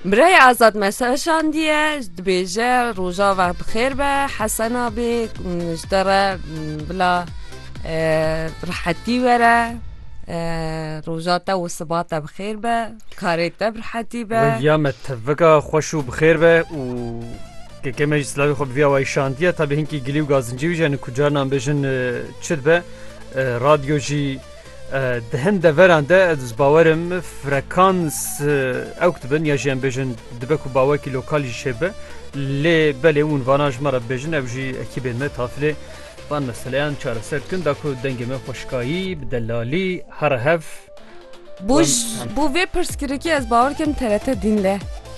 Birayê Azad mesejandiye dibêje rojava bi xêr be hesena bê ji te re bila rihetî were roja te û siba te bi xêr be karê te bi rihetî be Ya me tevika xweş û bi xêr be û keke me jî silavê xwe bi vî awayî şandiye tabî hinkî gilî û gazincî wî jî hene ku carinan bêjin çi dibe radyo jî Di hin deveran de ez bi bawer im frekans ewk dibin ya jî em bêjin dibe ku bawekî lokal jî çêbe lê belê û vana ji me re bêjin ew jî ekîbên me tafilê van meseleyan çareser dikin da ku dengê me xweşikayî bi delalî here hev Bû bû vê pirsgirêkê ez bawer dikim TRT Dînle.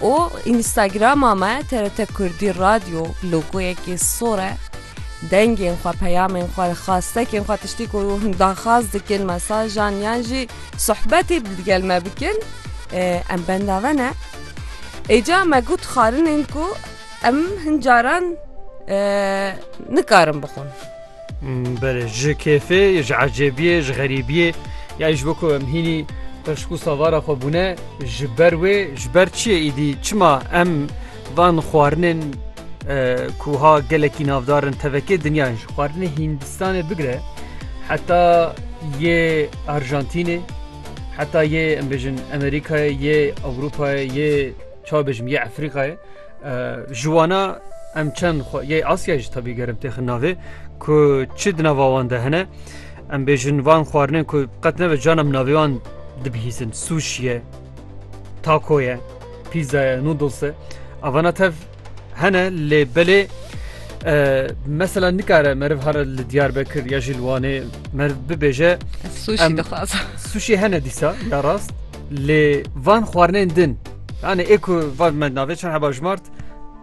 û Înîstagrama me TRT Kurdî Radyo bi logoyekê sor e. Dengên xwe, peyamên xwe, xastekên xwe tiştî ku hûn daxwaz dikin, mesajan yan jî sohbetê bi gel me bikin em benda ve ne. Êca me got xwarinên ku em hin caran nikarin bixwin. Belê ji kêfê, ji ecêbiyê, ji xerîbiyê ya ji bo ku em hînî peşkû savara xwe bûne ji ber wê ji ber çiyê îdî çima em van xwarinên ku ha gelekî navdarin tevekê dinyayin ji xwarinê Hîndistanê bigire heta yê Arjantînê heta yê em bêjin Amerîkayê yê Ewropayê yê çabêjim yê Efrîqayê Ji wana em çend xwe yê Asya jî tevî gerim têxin navê ku çi di nava wan de hene. Em bêjin van xwarinên ku qet neve can em navê wan dibihîzin suşiye, takoye, pîzaya, nudlse. Avana tev hene lê belê mesela nikare meriv hara li Diyarbekir ya jî li Wanê meriv bibêje Sushi dixwazim. suşî hene dîsa ya rast. Lê van xwarinên din yani ê ku van me navê çar heba jmart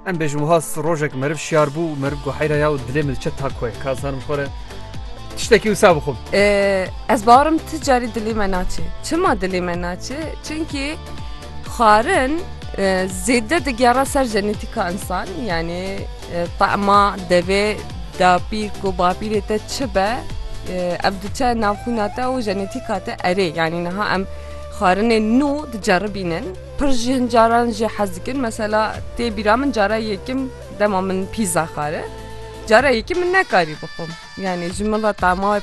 em bêjim wiha rojek meriv şiyar bû û meriv got heyra ya û dilê min çet tak xwe ka zanim xwe re tiştekî wisa bixwim. Ez barim tu carî dilê me naçê. Çima dilê me naçê? Çimkî xwarin zêde digera ser jenetîka insan yanî Tahma devê dapîr ku bapîrê te çi be ev diçe navxwîna te û jenetîka te erê yanî niha em xwarinê nû diceribînin pir jî hin caran jê hez dikin mesela tê bîra min cara yekim dema min pîza xwari cara yekî min nekarî bixwim yanî ji min re tahma